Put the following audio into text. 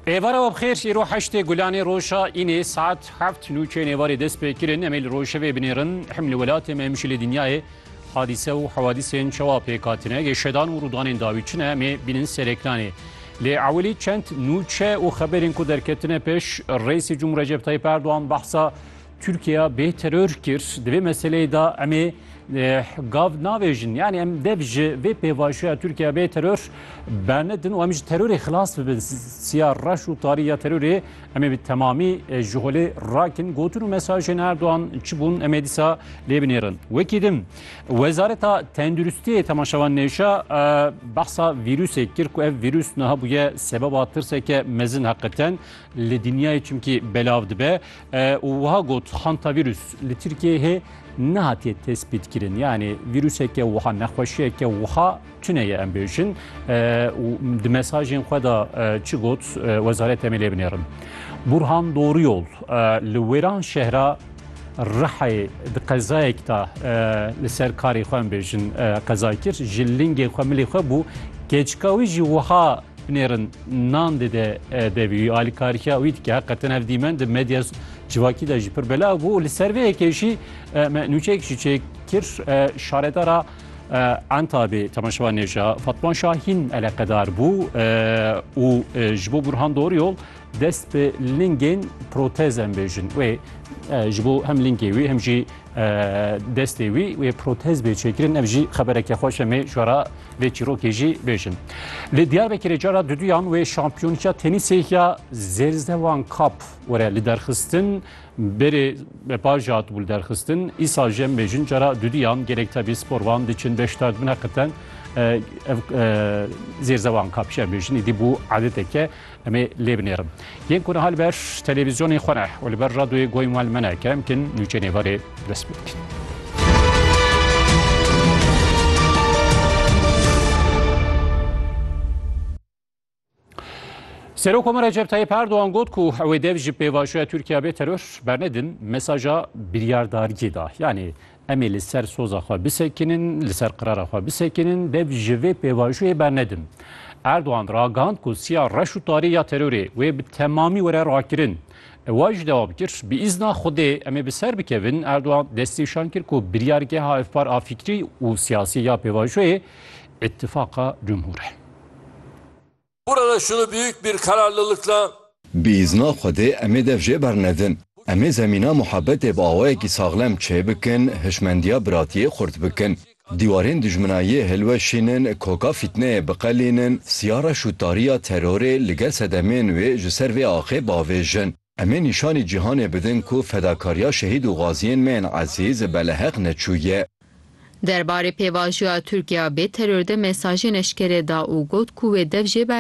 Êvara we bixêr îro heştê gulanê roja înê saet heft nûçê nêvarê dest pê kirin em ê li rojevê binêrin hem li welatê me hem jî li dinyayê hadîse û hewadîsên çawa pêk hatine yê şedan û rûdanên dawî çi ne em ê bînin ser ekranê lê ewilî çend nûçe û xeberên ku derketine pêş rêsê cumhur Recep Tayyip Erdogan behsa Tirkiya bê teror kir di vê meseleyê de em ê gav navêjin. Yani em dev ji vê pêvajoya Tirkiya bê teror bernedin û em ji terorê xilas bibin. Siya reş û tarî ya terorê em ê bi temamî ji holê rakin. Gotin û mesajên Erdogan çi bûn em ê dîsa lê binêrin. Wekî din Wezareta Tenduristiyê temaşevan nêşa behsa vîrusê kir ku ev vîrus niha bûye sebeba tirseke mezin heqeten li dinyayê çimkî belav dibe. û wiha got, Hantavîrus li Tirkiyeyê hê nehatiye tespîtkirin. Yanî vîruseke wiha, nexweşiyeke wiha tune ye em bêjin. û di mesajên xwe de çi got wezaret em ê lê binêrin. Burhan Doriyol li wêran şehra Rihayê di qezayek de li ser karê xwe em bêjin qeza kir. Ji lingê xwe milê xwe bû. Keçika wî jî wiha Binêrin nan dide devî alîkariya wî dike heqetin hev dîmen di medya civakî de jî pir belav bû li ser vê yekê jî me nûçeyek jî çêkir şaredara Entabê temaşewa nêja Fatman Şahîn eleqedar bû û ji bo Burhan Dor yol dest bi lingên protez em bêjin wê ji bo hem lingê wî hem jî destê wî wê protez bê çêkirin ev jî xebereke xweş em ê jara vê çîrokê jî bêjin. Li Diyarbekirê cara duduyan wê şampiyonîya tenîsê ya Zêrzewan Kap were li derxistin berê bepaja hat bû derxistin îsa jî em bêjin cara duduyan gelek tevî sporvan diçin beşdar bine qiten Zêrzewan Kap jî em bêjin îdî bû adeteke Em ê lê binêrin. Yên ku niha li ber televîzyonê xwe ne û li ber radyoyê goyên wan li me ne kerem bikin nûçeyê nêvarê dest pê bikin. Serok Komar Recep Tayyip Erdoğan got ku ew dev ji pêvajoya Tirkiye bê teror bernedin mesaja biryardariyê da. Yani Em ê li ser soza xwe bisekinin, li ser qirara xwe bisekinin, dev ji vê pêvajoyê bernedin. Erdogan ragihand ku siya reş û tarê ya terorê wê bi temamî were rakirin. Wa jî dewam kir, Bi îzna Xwedê em ê bi ser bikevin. Erdogan destnîşan kir ku biryargeha Efpar a fikrî û siyasî ya pêvajoyê Îtîfaqa Cumhur e. Burada şunu büyük bir kararlılıkla. Bi izna Xwedê em ê dev jê bernedin. Em ê zemîna muhebbetê bi awayekî saxlem çêbikin, hişmendiya biratiyê xurt bikin. Dîwarên dijminayiyê hilweşînin, koka fîtneyê biqelînin, siyara şûttariya terorê li gel sedemên wê ji ser vê axê bavêjin. Em ê nîşanî cîhanê bidin ku fedakariya şehîd û gaziyên me yên ezîz beleheq neçû ye. Derbarê pêvajiya Tirkiye bê teror de mesajên eşkere da û got ku wê dev jê bernede.